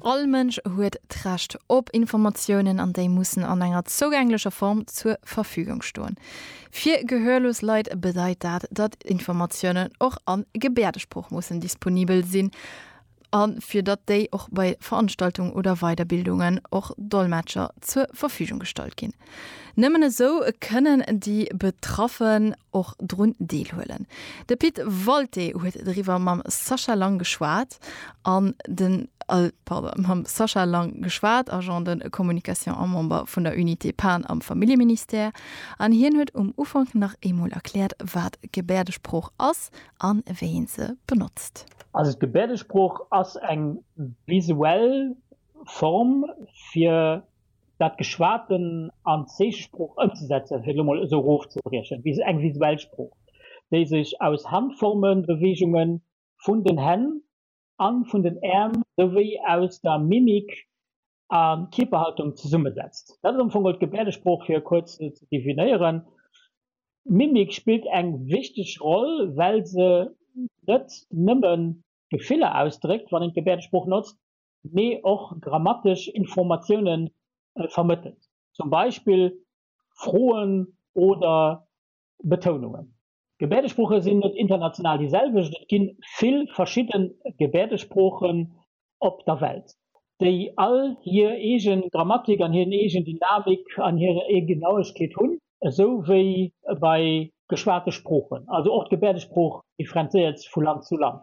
All Mënsch huet d'Recht op Informatiounen an déi mussen an enger zougänglecher Form zur Verfügung stoen. Fir gehörlos Leit bedeit dat, datt Informatiounen och a Gebäerdesprooch mussen disponibel sinn a fir datt déi och bei Veranstaltungen oder Weiderbildungen och Dolmetscher zur Verfügung gestallt ginn. Nëmmen esou kënnen déi Betraffen och drun deelhuelen. De Pit Walté huet driwwer mam Sascha Lang geschwat, an den, pardon, mam Sascha Lang geschwat, Agent de communication a Member vun der Unité Pan am Familljeministère, an hien huet um Ufank nach eemol erkläert, wat Gebäerdesprooch ass a wéi ee se benotzt. Also d'Gebäerdesprooch ass eng visuell Form fir dat Geschwaten an Zeechesprooch ëmzesetzen, fir et elo mol esou erofzebriechen, wéi eng visuell Sprooch, déi sech aus Handformen, Beweegungen vun den Hänn a vun den Äerm souwéi aus der Mimik a Kierperhaltung zesummesetzt. Dat ass am Fong geholl d'Gebäerdesprooch, fir e kuerz se ze definéieren. D'Mimik spillt eng wichteg Roll, well se net nëmme Gefiller ausdréckt, wann een d'Gebäerdesprooch notzt, mee och grammatesch Informatioune vermëttelt, zum Beispill Froen oder Betounungen. D'Gebäerdesprooche sinn net international déi selwecht, et gi vill verschidde Gebäerdesproochen op der Welt, déi all hir eege Grammatik an hir eegen Dynamik an hir eege Genauegkeet hunn, esou wéi bei geschwate Sproochen also och d'Gebäerdesprooch differenzéiert vu Land zu Land.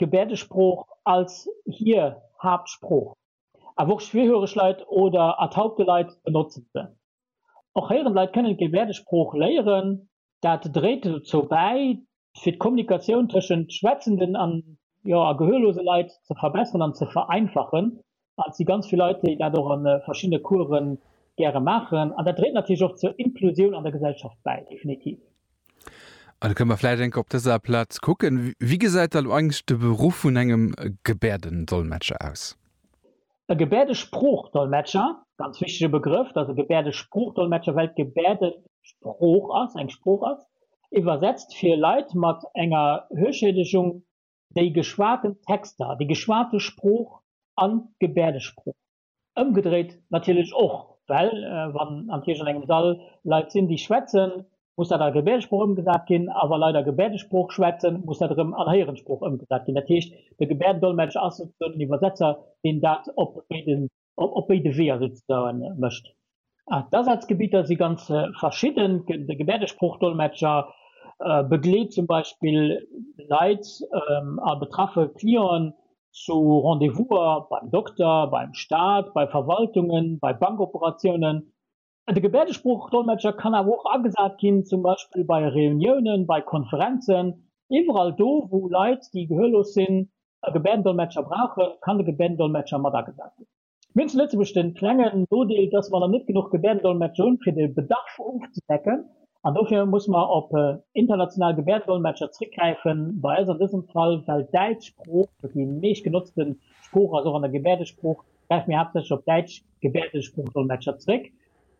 d'Gebäerdesprooch als hir Haaptsprooch, awer och schwerhöreg Leit oder ertaubte Leit benotzen se. Och héierend Leit kënnen d'Gebäerdesprooch léieren. Dat dréit dozou bäi, fir d'Kommunikatioun tëschent schwätzenden a gehörlose Leit ze verbesseren an ze vereinfachen, Et si ganz vill Leit, déi dat och a verschiddene Course gäre maachen. An dat dréit natierlech och zur Inklusioun an der Gesellschaft bäi, definitiv. An da kënne mer vläicht eng Kéier op dëser Plaz kucken, Wéi gesäit da lo eigentlech de Beruff vun engem Gebäerdendolmetscher aus? E Gebäerdesprooch-Dolmetscher, ganz wichtege Begrëff, dat ass e Gebäerdesprooch-Dolmetscher, well d'Gebäerde Sprooch ass, eng Sprooch ass, iwwersetzt fir Leit mat enger Hörschädegung, déi geschwaten Texter, déi geschwate Sprooch an d'Gebäerdesprooch. Ëmgedréit natierlech och, well wann am Kierch an engem Sall Leit sinn, déi schwätzen, muss dat a Gebäerdesprooch ëmgesat ginn, a wa Leit a Gebäerdesprooch schwätzen, muss dat erëm an Héierensprooch ëmgesat ginn. Dat heescht, de Gebäerdendolmetscher ass souzesoen den Iwwersetzer, deen dat op béide op béide Weeër souzesoen mécht. D'Asazgebitter si ganz verschidden, de Gebäerdesprooch-Dolmetscher begleet zum Beispill Leit a betraffe Clienten zu Rendez-vouser beim Dokter, beim Staat, bei Verwaltungen, bei Bankoperatiounen De Gebäerdesprooch-Dolmetscher kann awer och agesat ginn, zum Beispill bei Reuniounen, bei Konferenzen. Iwwerall do, wou Leit, déi gehörlos sinn, e Gebäerdendolmetscher brauchen, kann de Gebäerdendolmetscher mat agesat ginn. Mir hunn zu Lëtzebuerg de klenge Nodeel, dass mer nach net genuch Gebäerdendolmetscher hunn, fir de Bedarf ofzedecken. An dofir musse mer op international Gebäerdendolmetscher zrëckgräifen. Bei eis an dësem Fall, well d'Däitsch Sprooch déi meeschtgenotzte Sprooch ass, och an der Gebäerdesprooch, gräife mir haaptsächlech op däitsch Gebäerdesprooch-Dolmetscher zréck.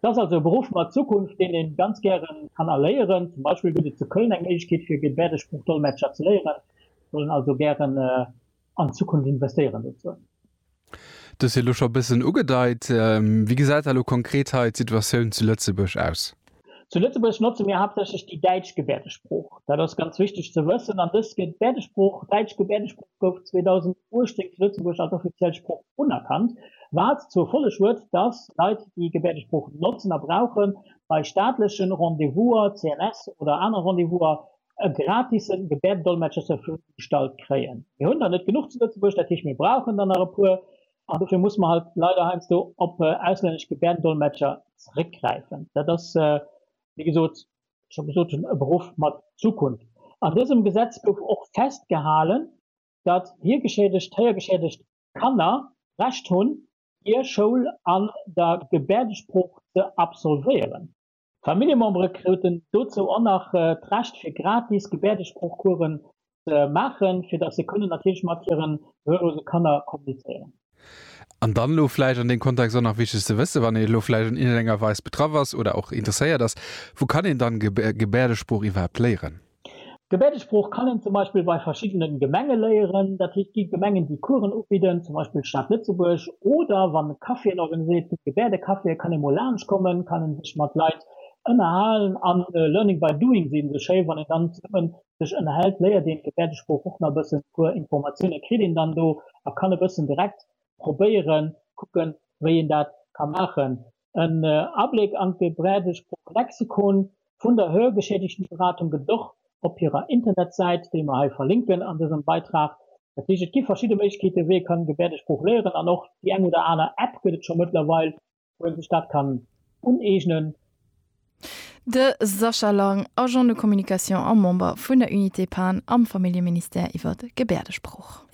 Et ass also e Beruff mat Zukunft, deen ee ganz gäre kann erléieren. Zum Beispill gëtt et zu Köln eng Méiglechkeet fir Gebäerdesprooch-Dolmetscher ze léieren. Ech wollen also gären an d'Zukunft investéieren dozou. Du hues jo elo scho e bëssen ugedeit. Wéi gesäit da elo konkret hei d'Situatioun zu Lëtzebuerg aus? Zu Lëtzebuerg notze mir haaptsächlech déi däitsch Gebäerdesprooch. Dat ass ganz wichteg ze wëssen. An dës Gebäerdesprooch, däitsch Gebäerdesprooch, gouf 2018 zu Lëtzebuerg als offiziell Sprooch unerkannt, wat zur Folleg huet, datt Leit, déi Gebäerdesprooch notzen a brauchen, bei staatlechen Rendez-vouser, CNS, oder aner Rendez-vouser e gratisen Gebäerdendolmetscher zur Verfügung gestallt kréien. Mir hunn der net genuch zu Lëtzebuerg, dat heescht mir brauchen der nach e puer. An dofir musse mer halt leider heiansdo op auslännesch Gebärdendolmetscher zréckgräifen. Dat ass, wéi gesot, scho gesot hunn, e Beruff mat Zukunft. An dësem Gesetz gouf och festgehalen, datt hiergeschädegt, héiergeschädegt Kanner d'Recht hunn, hir Schoul an der Gebäerdesprooch ze absolvéieren. D'Familljemembere kruten dozou och nach d'Recht fir gratis Gebäerdesproochcoursen ze maachen, fir datt se kënnen natierlech mat hiren gehörlose Kanner kommunizéieren. An dann elo vläicht an deem Kontext och nach wichteg ze wëssen, wann een elo vläicht an iergendenger Weis betraff ass oder och interesséiert ass, Wou kann een dann Gebäerdesprooch iwwerhaapt léieren? D'Gebärdesprooch kann een zum Beispill bei verschiddene Gemenge léieren. Dat heescht, et gi Gemengen, déi Coursen ubidden, zum Beispill d'Stad Lëtzebuerg. Oder wann e Caféen organiséiert gëtt, Gebärdecaféen, kann ee mol laanschtkommen, kann ee sech mat Leit ënnerhalen a learning by doing sinn esou schéi. Wann een dann zesummen sech ënnerhält, léiert een d'Gebärdesprooch och nach e bëssen. E puer Informatiounen kritt een dann do a kann e bëssen direkt probéieren, kucken, wéi een dat ka maachen. en Abléck an de Brädesprooch Lexikon vun der Hörgeschädigtenberatung gëtt et och op hirer Internetsäit, déi mer hei verlinken an dësem Beitrag. Dat heescht, et gi verschidde Méiglechkeete wéi ee kann Gebärdesprooch léieren an och déi eng oder aner App gëtt et scho mëttlerweil, wou ee sech dat kann uneegnen. De Sascha Lang, Agent de communication a Member vun der Unité Pan am Familljeministère iwwer Gebärdesprooch.